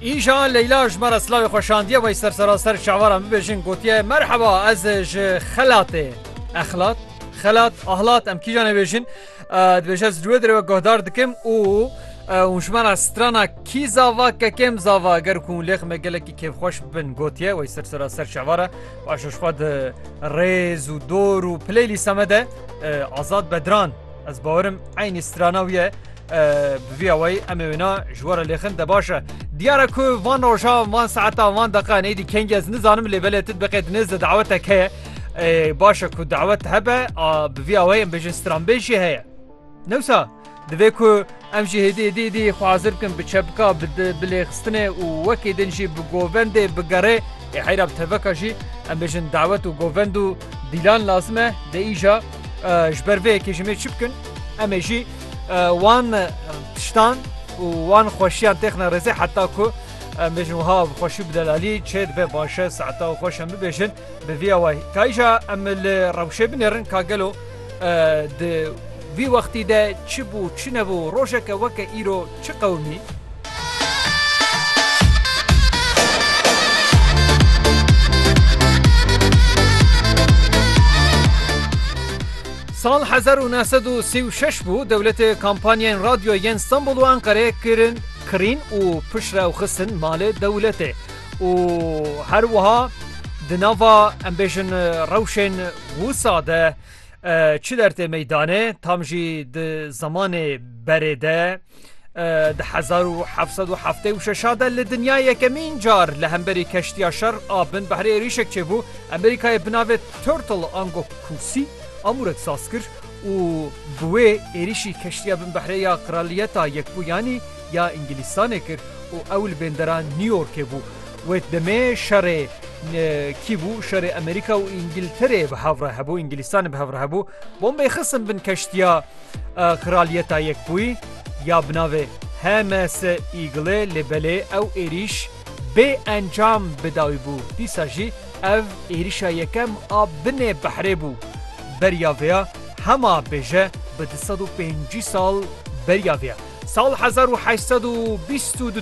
Îja Leyla ji me re silavê xwe şandiye wey ser seraser şevaran bibêjin gotiye merheba ez ji xelatê exlat xelat ahlat em kîjan êbêjin dibêje ez duê dirêwe guhdar dikim û û ji me re strana kî zava kekêm zava ger ku lêx me gelekî kêfxweş bin gotiye wey ser seraser şevara baş ji xwe di rêz û dor û pileylî seme de azad bedran ez bawerim eynî strana wî ye Bi vî awayî em ê wêna ji we re lêxin de baş e. Diyar e ku van rojan, van saetan, van deqan êdî kengî ez nizanim lê belê tu diqê di nêzde dawetek heye. Baş e ku dawet hebe a bi vî awayî em bêjin stranbêj jî heye. Newsa divê ku em jî hêdî êdî êdî xwe hazir bikin bi çepka bi bilêxistinê û wekî din jî bi govendê bigerê ê heyra bi teveka jî em bêjin dawet û govend û dîlan lazim e de îja ji ber vê yekê ji mêr çi bikin em ê jî Wan tiştan û wan xweşiyan têxine rêzê heta ku em bêjin wiha bi xweşî û bi delalî çê dibe baş e saeta û xweş em bibêjin bi vî awayî. Ka îja em li rewşê binêrin ka gelo di vî wextî de çi bû çi nebû rojeke weke îro Çi qewimî? Sal hezar û neh sed û sî û şeş bû dewletê kampanyayên radyo yên Stenbol û Enqereyê kirin kirîn û piştre ew xistin malê dewletê û her wiha di nava em bêjin rewşên wisa de Çi dertê meydane tam jî di zemanê berê de di hezar û heft sed û heftê û şeş de li dinya yekemîn car li hemberî keştiya şer a bin behrê êrîşek çêbû Amerîkayê bi navê Turtle ango kûsî amûrek saz kir û bi wê êrîşî keştiya bin behrê ya Qiraliyeta Yekbûyanî ya Îngilîstanê kir û ew li bêndera New Yorkê bû. Wê demê şerê kî bû şerê Amerîka û Îngilterê bi hev re hebû Îngilîstanê bi hev re hebû bombeyê xistin bin keştiya Kraliyeta Yekbûyî ya bi navê HMS Eagle lê belê ew êrîş bê encam bi dawî bû. Dîsa jî ev êrîşa yekem a binê behrê bû. Beriya vêya hema bêje bi du sed û pêncî sal beriya vêya. Sal hezar û heşt sed û bîst û du